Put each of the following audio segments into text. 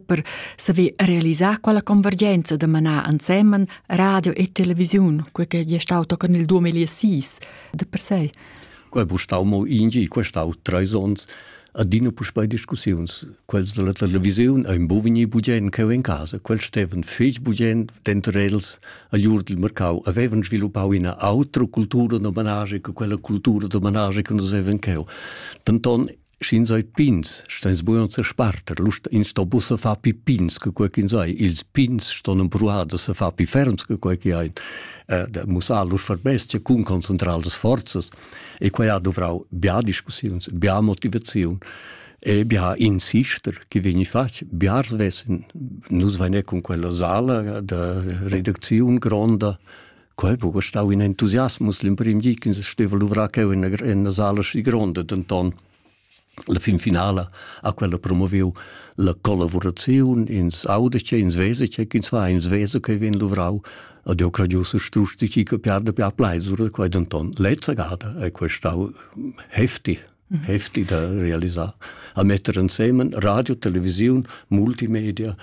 per saver realisar quella convergenza da manar ensemen radio e televisiun, quel che è stato con il 2006 de per sé. Quel stau mo ingi, quel stau tre ons adina puspei discussiuns. Quels della televisiun ein bovini bugien cheu in casa. Quels steven fetg bugien denterels agl Urdel Mercau avevan sviluppau ina autra cultura d'omenage che quella cultura d'omenage che nus avevan cheu. Tanton Sch'ins ei pins, steins bugen sesparter, lust ins sto buca far pi pins che quei ch'ins ei. Ils pins ston empruar da se far pi ferms che quei che ein, eh, da mussar lur verbestia cun concentrar las forzas. E quei ha duvrau bia discussiuns, bia motivaziun e bia insister che vegni fatg. Bia vessen, nus vegne cun quella sala da redacziun gronda Quei buca stau in entusiasmus l'emprem di ch'ins steva luvrar cheu en la, en la sala schi gronda, denton la fin finala ha quella promoviu la collaboraziun, ins auda che, ins vese che, ins va, ins vese che vegn luvrau ed jeu credius strusch di chi che piarda piar pleisura quei denton. Lezza gada è quei stau heftig, mhm. heftig da realisar, a metter insemen radio, televisiun, multimedia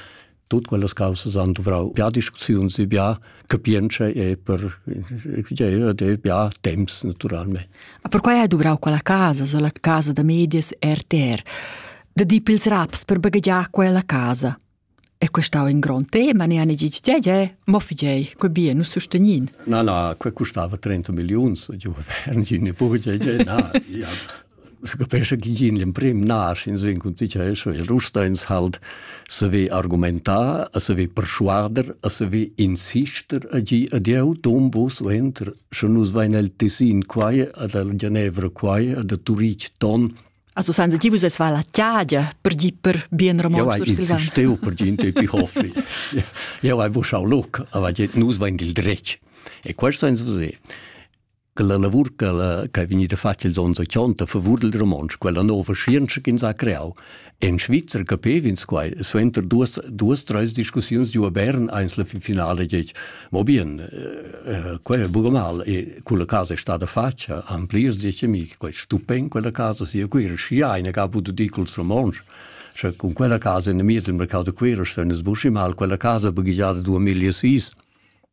Tut quellas causas han duvrau bia discussiuns e bia capientscha e per e bia temps naturalmente. Ma perquai hai duvrau quella casa, so la casa da medias RTR, da di pils raps per baghegiar quella casa. E questau in grond tema, ne ani gig ge ge, mo figei, co bia nu sustagnin. Na, na, que costava 30 millions, io, Herrn Gine Burge, ge, na, ja. Capescha chi in l'emprim nasch insumma cun tgi cha es, il Rusteins halt se ve argumentar, a se ve perschuader, a se ve insister a gi ad eau, dom vo suenter, scha nus vain al Tessin quai, ad la Genevra quai, ad a Turich ton. Also san se ti vus es va la tiagia per gi per bien Ramon sur Silvan. Steu per gi in tepi hofli. Eau hai vos schau loc, aber nus vain il dretg. E quest sainz vusé. che la lavur che è vegnida fatta ils onns 80 favur il romontsch, quella nova scienza che ins ha creau. En Svizra capev'ins quai, suenter duas, duas treis discussiuns di a Bern eins la finale dic, mo bien, eh, quel è buca mal, e quella casa è stata fatta, han plirs dic a mi, quel stupen quella casa sia quira, schi eine gab du dicols romontsch. Sche con quella casa in miez il mercato quira stanno sbusci mal, quella casa baghigiada 2006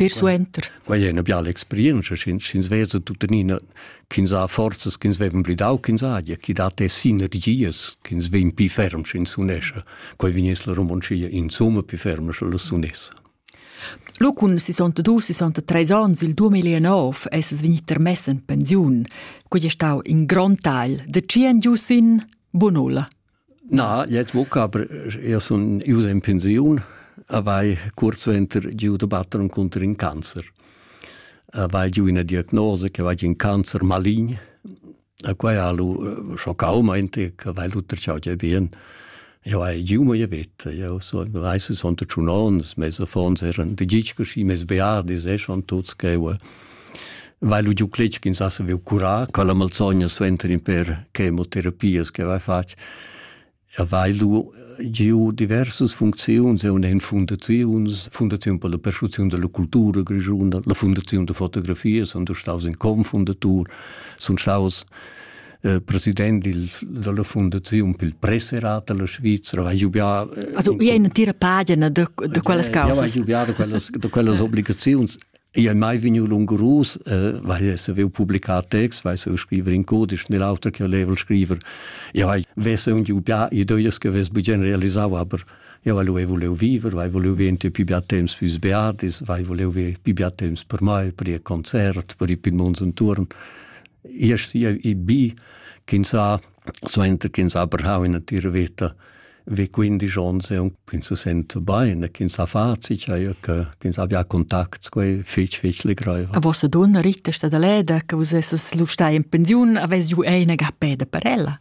Persuenter. Quai è una biala experienza, sch'ins vesa tuttenina ch'ins ha forzas ch'ins vevan pli dau ch'ins haja, chi dat e sinergias ch'ins vegn pi ferm sch'ins unescia. Quai vegnes la Romoncia insomma pi ferm sche las unessa. Lo cun 62-63 ans il 2009 es es vegnit termess in pensiun. Quai è stau in grond tagl. De ci en giu sin? Bunulla. Na, jetzt buca, aber io sun ius in pensiun, avai cuort suenter giu da batter encunter in cancer. Avai giu ina diagnosa che va in cancer malign, a quai ha lu schoccau meinte che vai lu tracciau già bien. Io hai giu mia vita, io so, weiß es unter tschunons, mes affons eran de gitsch, schi mes beardis e schon tuts che Vai lu giu cletg ch'ins ha saviu curar quella malsogna suenter in per chemoterapias che vai fatg. E vai lu giu diversas funcziuns, e una en fundaziuns, Fundaziun per la perschuziun della cultura grischuna, la Fundaziun da fotografia, sono staus in confundatur, sono staus eh, president il, della Fondazione per il Presserat della Svizzera, vai giubià... Eh, also, in, una tira pagina de, de quelles causes. Ja, vai giubià de quelles, de quelles obligazioni Io è mai vigniu lungurus, eh, weil esse avevo publicat text, weil so scriver in codisch, nell'altro che level scriver. Io hai vesse un giu pià ideias che ves bugen realisau, aber io weil volevo vivere, weil volevo gente più più temps fürs Beardis, weil volevo più più temps per mai, per il concert, per il Pimons und Turn. Io sia i bi, kin sa Suenter ch'ins ha brau ina tira veta vi quindisch onns e ins se senta bein e ch'ins ha facit eir che ch'ins abbia contacts quei fetg fetg legreiva. A vossa donna Rittesta da Leda che vus esses lu stai in pensiun, avess ju eine ga peda per ella.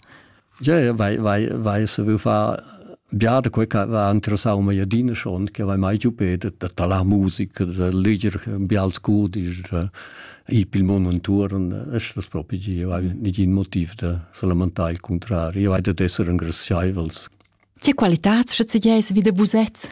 Ja, ja, vai vai vai se vu fa Giade quei che aveva interessau mei adina schon, che aveva mai giu pedet da talar musica, da leger bials cudisch, ir pil mund entuorn, estas propi gie, eu hai negin motiv da sa lamentar il cuntrari, eu hai dad esser engraziaivels. Che qualitats sche tgei vi da vusets?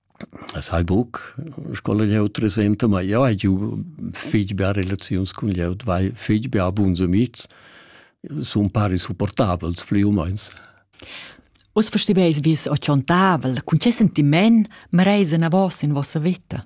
As hai buc scola glieud presenta, ma jeu hai giu fich bia relaziuns cun glieud, vai fich bia buns amihs, sun pari supportabels plü u meins. Uss festiveis vis o tschontavel, cun che sentiment mareis enavos in vossa vita?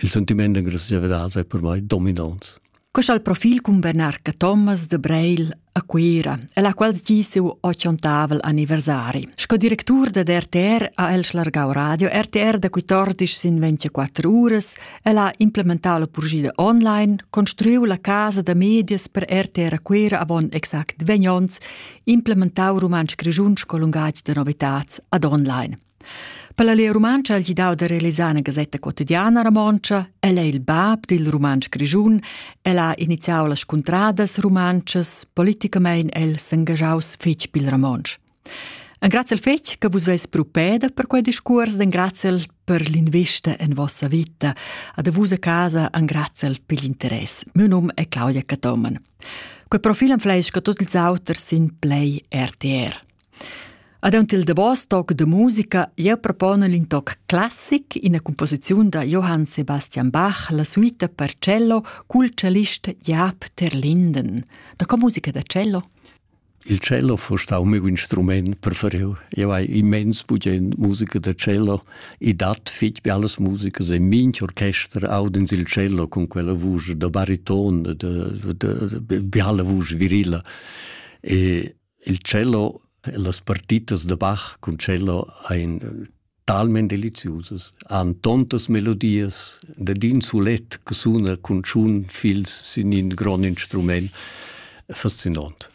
Il sentiment de graziavidad è per me dominant. Questo è il profil con Bernarca Thomas de Breil a Cuira, la qual gi seu ochiontavel anniversari. Sco directur de RTR a El Schlargau Radio, RTR da 14 sin 24 uras, el ha implementato la purgida online, construiu la casa da medias per RTR a Cuira avon exact 20 onns, implementau rumantsch grigiun sco lungatg de novitats ad online. Per la Lia Rumantscha ha il gidau da realisar una gasetta quotidiana romontscha. El è il bab dil rumantsch grischun. El ha iniziau las scuntradas rumantschas. Politicamein el s'engagiaus fetg pil romontsch. Engraziel fetg che vus veis propeda per quei discurs, engraziel per l'invista en vossa vita. Ad vus a casa engraziel per l'interess. Mio num è Claudia Catoman. Quei profil am fleisca tot ils auters sin Play RTR. Aunc il davos toc da musica jeu proponel in toc classic, ina composiziun da Johann Sebastian Bach, la suita per cello cul cellist Jaap ter Linden. Da co musica da cello? Il cello fu stau miu instrument preferiu. Eu hai immens bugen musica da cello e dat fitg be alles musica e minch orchester audens il cello con quella vusch da bariton, da, da, da, da, da, da, da, da, da, da, da, da, da, da, da, Il cello e las partitas da Bach cun cello ein talment deliziusas, han tontas melodias dad in sulet che suna cun tschun fils sin in grond instrument, fascinont.